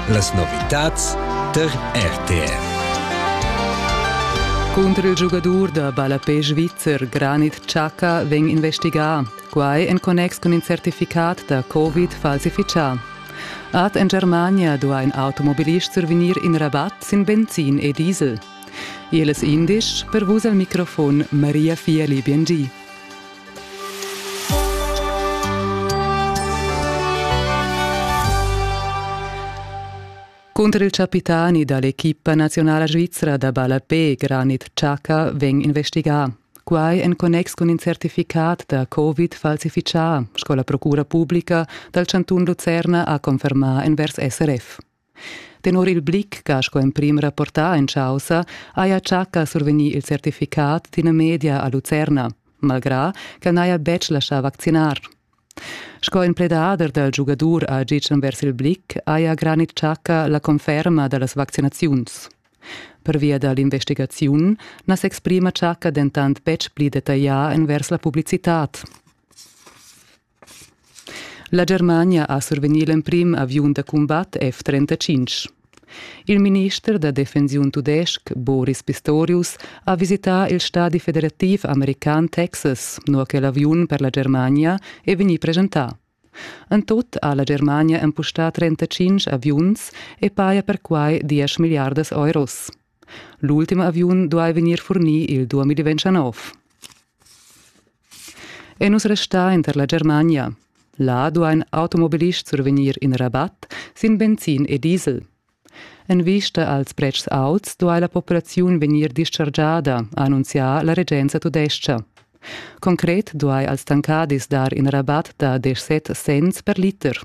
Las novitads tar RTR. Cunter il giugadur da ballapé svizzer Granit Xhaka vegn investigà. Quai en connex cun in certificat da Covid falsifichà. Ad en Germania duai in automobilist survegnir in Rabatt sin Benzin e Diesel. Il es indisch per vus al microfon Maria Fieli Biengi. Cunter il capitani da l'equipa nazionala svizra da ballapé Granit Xhaka vegn investigà. Quai en connex cun in certificat da Covid falsifichà, sco la Procura publica dal chantun Lucerna ha confermà envers SRF. Tenor il Blick ch'ha sco emprim rapportà en chaussa haja Chaka survegnì il certificat d'ina media a Lucerna, malgrà ch'el n'haja betg laschà vaccinar. Sco in pledader dal giugadur a Gitschen vers il Blick haja Granit Chaka la conferma da las vaccinaziuns. Pervia da l'investigaziun na s'exprima Chaka dentant betg pli detaglià envers la publicitad. La Germania ha survegnì l'emprim aviun da cumbat F-35. Il minister da defensiun tudestg Boris Pistorius ha visità il stadi federativ american Texas, nua che l'aviun per la Germania è vegnì presentà. En tut ha la Germania empustà 35 aviuns e paja perquai 10 milliardas euros. L'ultim aviun duai vegnir furnì il 2029. E nus restar inter la Germania. Là duain automobilists survegnir in rabat sin benzin e diesel. En vista als pretschs auts duai la populaziun vegnir dischargiada, ha annunzià la regenza tudestga. Concret duai als tancadis dar in rabat da 17 cents per liter.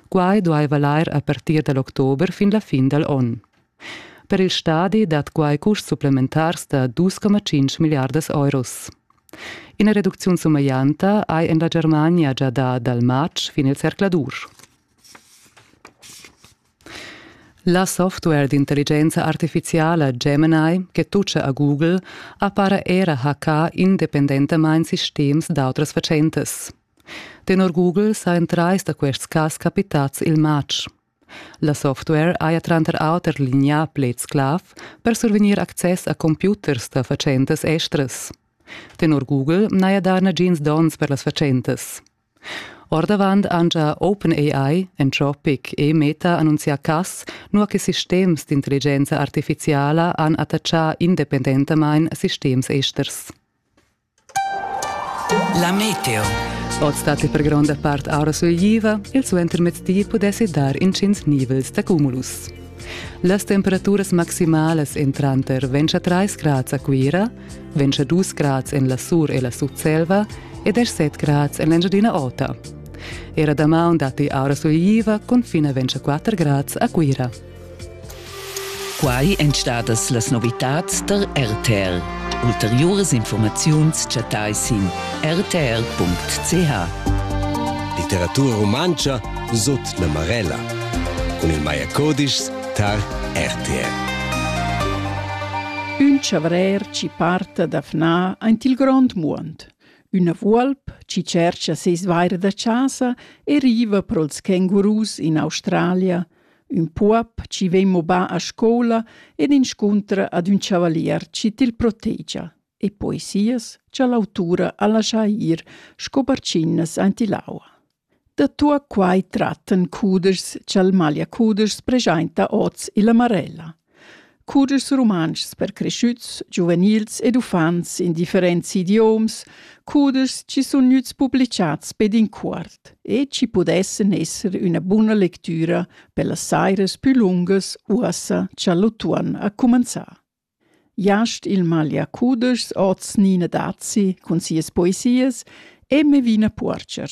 Quai duai valair a partir da l'october fin la fin dal onn. Per il stadi dat quai custs supplementars da dus coma tschintg milliardas euros. Ina reducziun sumeglianta hai en la Germania gia dà dal matg fin il zercladur. La software d'intelligenza artifiziala Gemini, che tutscha a Google, appara era hackà independentamain sistems d'autras fatschentas. Tenor Google sajan trais da quests cas capitads il matg. La software haja tranter auter lignà pleds clav per survegnir access a computers da fatschentas estras. Tenor Google n'haja dà nagins donns per las fatschentas. Ordavant han già OpenAI, Anthropic e Meta annunzià cas, nua che sistems d'intelligenza artifiziala han attaccà independentamain sistems esters. La meteo. Oz datti per gronda part aura sulegliva, il suentermezdi pudessi dar intgins nivels d'acumulus. Las temperaturas maximalas èn tranter 23 grads a Cuira, 22 grads en la Sur e la Sutselva e 17 grads en l'Engiadina Ota. Era damaun datti aura sulegliva cun fin a 24 grads a Cuira. Quai èn stadas las novitads tar RTL. Ulteriuras informaziuns chattai sin rtr.ch. Litteratura rumantscha sut la Marella cun il Maja Codischs tar RTL. Ün chavrer chi parta da fnar aint il grond muond. Üna vuolp chi tschercha seis vaire da chasa e riva pro'ls kengurus in Australia Ün puob chi vegn mobà a scoula ed inscuntra ad ün chavalier chi til protegia e poesias cha l'autura ha laschà ir sco barchinnas aint ill'aua. Da tuot quai trattan cudeschs cha'l Maglia-cudeschs preschainta hoz illa Marella. cudeschs rumantschs per creschüts, giuvenils ed uffants in differents idioms, cudeschs chi sun gnüts publichats be d'incuort e chi pudessan esser üna buna lectüra pellas sairas pü lungas uossa cha l'utuon ha cumanzà. Jast il maglia cudeschs hoz Nina Dazi cun sias poesias e Mevina Puorcher